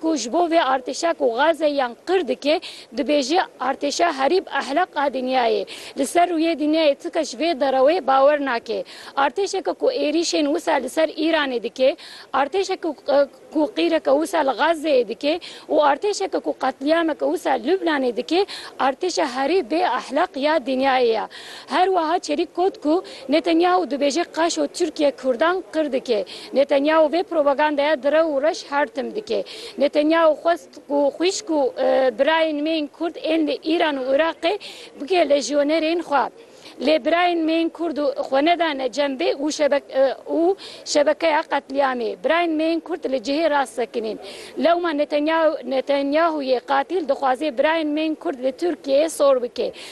ku ji bo vê artêşa ku gaze yan qir dike dibêje artêşa herîb ehleq a dinyayê. Li ser rûyê dinyayê ti kes ji vê derewê bawer nake. Artêşeke ku êrîşên wisa li ser Îranê dike, artêşeke ku qîreke wisa li Gazeyê dike û artêşeke ku qetlîameke wisa Lubnanê dike artêşa herî bê ehleq ya dinyayê ye. Her wiha çerîk got ku, Netanyahu dibêje qaşo Tirkiye Kurdan qir dike. Netanyahu vê propagandaya direw û reş her tim dike. Netanyahu xwest ku xwîşk û birayên me yên Kurd ên li Îran û Iraqê bike lejyonerên xwe. Lê birayên me yên Kurd xwe nedane cembê û şebekeya qetlîamê. Birayên me yên Kurd li cihê rast sekinîn. Lewma Netanyahu yê qatîl dixwaze birayên me yên Kurd li Tirkiyeyê sor bike.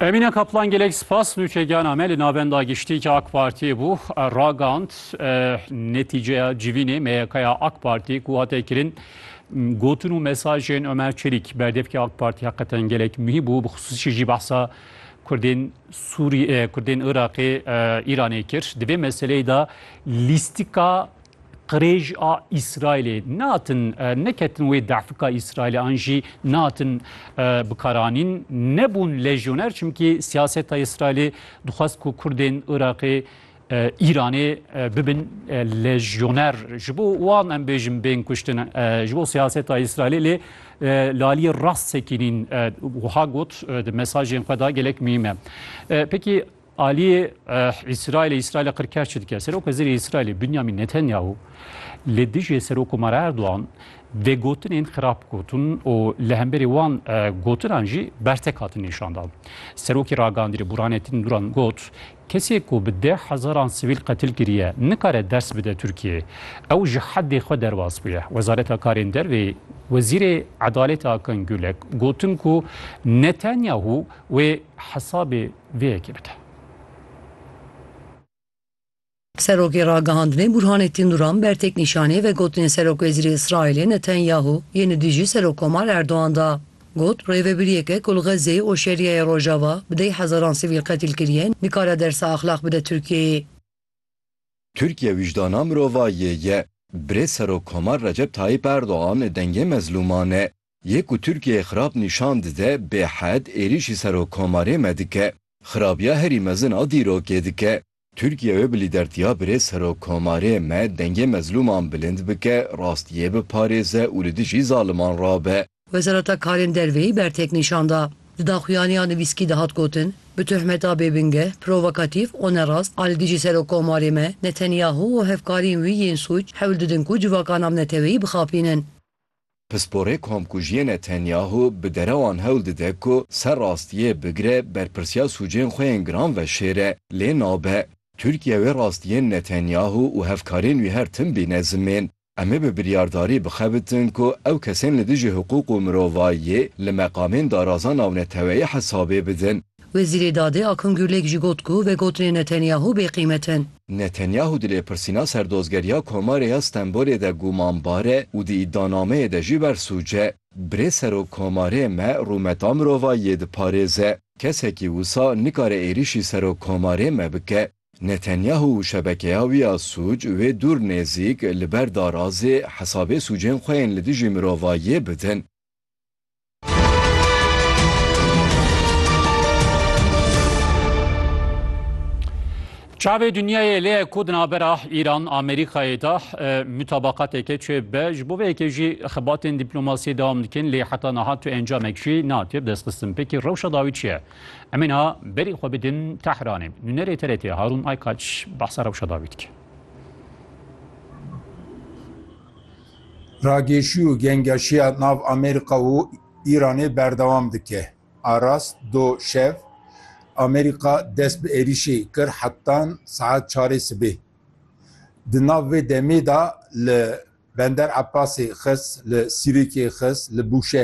Emîne Kaplan gelek spas nûçegana me li navenda giştî ki AK Partiyê bû ragand netîceya civînê meyekaya AK Partiyê ku hate kirin gotin û mesajên Ömer Çelîk berdevkê AK Partî heqeten gelek muhîm bû bi xisûsî jî behsa Kurdên Sûrî Kurdên Iraqê Îranê kir. Di vê meseleyê de lîstika Qirêj a Îsraîlê natin neketin wê dehfika Îsraîlê an jî natin bikaranîn nebûn lejyoner çimkî siyaseta Îsraîlê dixwest ku Kurdên Iraqê Îranê bibin lejyoner ji bo wan em bêjin bên kuştin ji bo siyaseta Îsraîlê lê laliyê rast sekînîn wiha got di mesajên xwe da gelek mîme pekî Aliyê Îsraîlê Îsraîlê qirkar çi dike? Serok Wezîrê Îsraîlê Binyamin Netanyahu li dijî Serokomara Erdogan vê gotinên xirab gotin û li hemberî wan gotinan jî bertek hatin nîşandan. Serokê ragihandîrê Burhanettin Duran got, Kesê ku bi deh hezaran sivîl qetil kiriye nikare ders bide Tirkiyeyê. Ew ji heddê xwe derbas bûye. Wezareta Karên Dervê Wezîrê Edalêtê Akin Gulek gotin ku Netanyahu wê hesabê Vê yekê bike. Serokê Ragihandinê Bûrhanê Tînûran ber têknîşanê vegotinên Serokwezîrê Îsraîlê Netenyahû yên li dijî Serokkomar Erdogan da. Got, Rêvebiriyeke ku li Xezzeyê û Şerîeyê Rojava bi deh hezaran sivîl qetîl kiriye nikare dersa exlaq bide Tirkiyeyê. Tirkiye wijdana mirovayê ye. Birêz Serokkomar Recep Tayîp Erdogan dengê mezlûman e. Yê ku Tirkiyeyê xirab nîşan dide bêhed êrîşî Serokkomarê me dike. Xirabiya herî mezin a dîrokê dike. Tirkiye wê bi lîdertiya birêz Serokkomarê me dengê mezlûman bilind bike, rastiyê biparêze û li dijî zaliman rabe. Wezareta Karên Derveyî bertek nîşan da. Di daxuyaniya nivîskî de hat gotin, Bi tohmeta bêbingeh, provokatîf û nerast a li dijî Serokkomarê me, Netanyahu û hevkarîn wî yên sûc hewl didin ku civakana bi neteweyî bixapînin. Pisporê komkujiyê Netanyahu bi derewan hewl dide ku ser rastiyê bigire, berpirsiya sûcên xwe yên giran veşêre, lê nabe. Tirkiye wê rastiyên Netanyahu û hevkarên wî her tim bîne zimên. Em ê bi biryardarî bixebitin ku ew kesên li dijî hiqûq û mirovayiyê li meqamên daraza navneteweyî hesabê bidin. Wezîrê Dadê Akun Gurlêk jî got ku vegotinên Netanyahu bêqîmet in. Netanyahu di lêpirsîna ser dozgeriya Komarê ya Stenbolê de gumanbar e û di îdianameyê de jî bersûc e. Birê Serok Komarê me rûmeta mirovayî yê diparêze. Kesekî wisa nikare êrîşî Serok Komarê me bike. Netanyahu û şebekeya wî ya sûc wê dûr nêzîk li ber darazê hesabê sûcên xwe yên li dijî mirovayiyê bidin. Çavê dinyayê lê ku di navbera Îran Amerîkayê de mutabaqateke çê be ji bo vêyekê jî xebatên dîplomasiyê dewam dikin lê heta niha tu encamek jî natê bi destxistin pêkî rewşa dawî çi ye em ê niha berî xwe bidin Tehranê nûnerê TRT Harûn Aykaç behsa rewşa dawî dike. Ragêşî û gengeşiya nav Amerîka û Îranê berdewam dike. Arast do şev Amerîka dest bi êrîşê kir hetan saet çarê sibê. Di nav vê demê de li Bender Ebbasê xist, li Sirikê xist, li Bûşehrê.